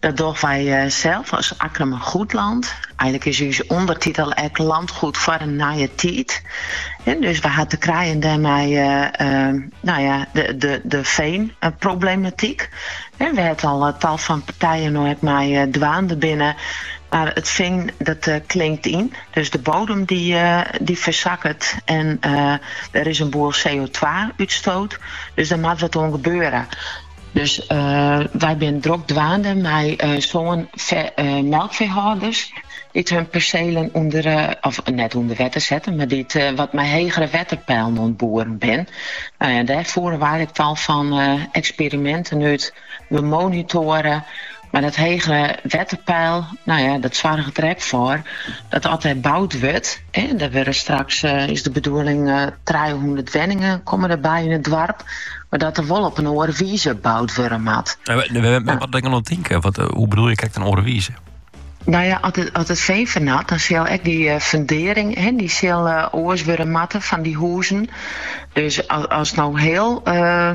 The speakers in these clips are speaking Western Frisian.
Dat dogge wy sels as Akkrum Goedland. Eigenlik is ús ûndertitel ek Landgoed foar in nije tiid. Dus wy ha te krijen dêrmei nou ja, de, de, de veenproblematyk, wêr't al tal fan partijen no ek mei dwaande binne. Mar it fean dat klinkt yn, dus de bodem dy, dy fersakket en der is in boel CO2-útstoot. Dus der moat wat oan gebeure. Dus wy binne drok dwaande mei sân melkfeehâlders dy't hun perselen ûnder of net ûnder wetter setten, mar dy't wat mei hegere wetterpeilen oan it boeren binne. Dêr foere wy ek tal fan eksperiminten út. We monitoaren. Mar dat hege wetterpeil, nou ja, dat soarget der ek foar dat as der boud wurdt, der wurde straks, eh, is de bedoeling, eh, trijehûndert wenningen komme der by yn it doarp, mar dat der wol op in oare wize boud wurde moat. Eh, wat moat ik dan tinken? Wat, eh, hoe bedoele je krekt, in oare wize? Nou ja, at it, at it fean fernat, dan sil ek dy eh, fundering, hè, dy sil uh, oars wurde moatte fan dy huzen. Dus as, as no hiel, uh,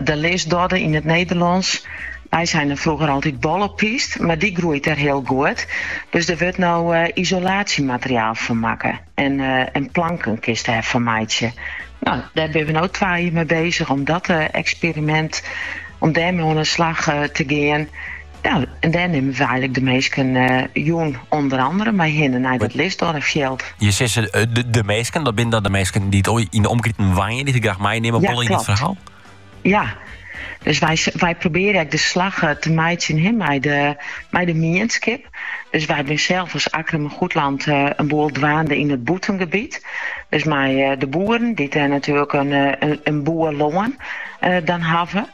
De lisdodde yn it Nederlânsk. Wy seinen froeger altyd bollepyst, mar dy groeit dêr hiel goed. Dus der wurdt no isolaasjemateriaal fan makke en planken kinst dêr fan meitsje. No, dêr binne we no twa jier mei bezich om dat eksperimint, om dêrmei oan 'e slach te gean. Ja, en dêr nimme we eigenlik de minsken jûn ûnder andere mei hinne nei dat lisdoddefjild. Je sizze de, de minsken, dat binne dan de minsken dy't yn de omkriten wenje, dy't je graach meinimme, ja, yn it ferhaal? Ja, dus wy, wy probearje ek de slach eh, te meitsjen hè, mei, de, mei de mienskip. Dus wy binne sels as Akkrum Goedland eh, in boel dwaande yn it bûtengebiet. Dus mei eh, de boeren, dy't dêr natuerlik in, in, in boel lân dan hawwe.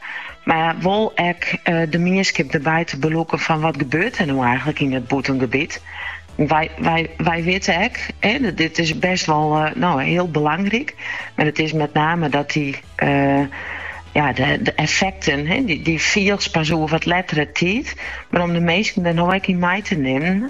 Mar wol ek de mienskip derby te belûken fan wat gebeurt der no eigentlik yn dat bûtengebiet. Wy, wy, wy witte ek, hè, dit is best wol uh, eh, nou, hiel belangryk. Mar it is mei name dat dy. Uh, ja, de, de effekten, hè, dy, dy fielst pas oer wat lettere tiid. Mar om de minsken der no ek yn mei te nimmen,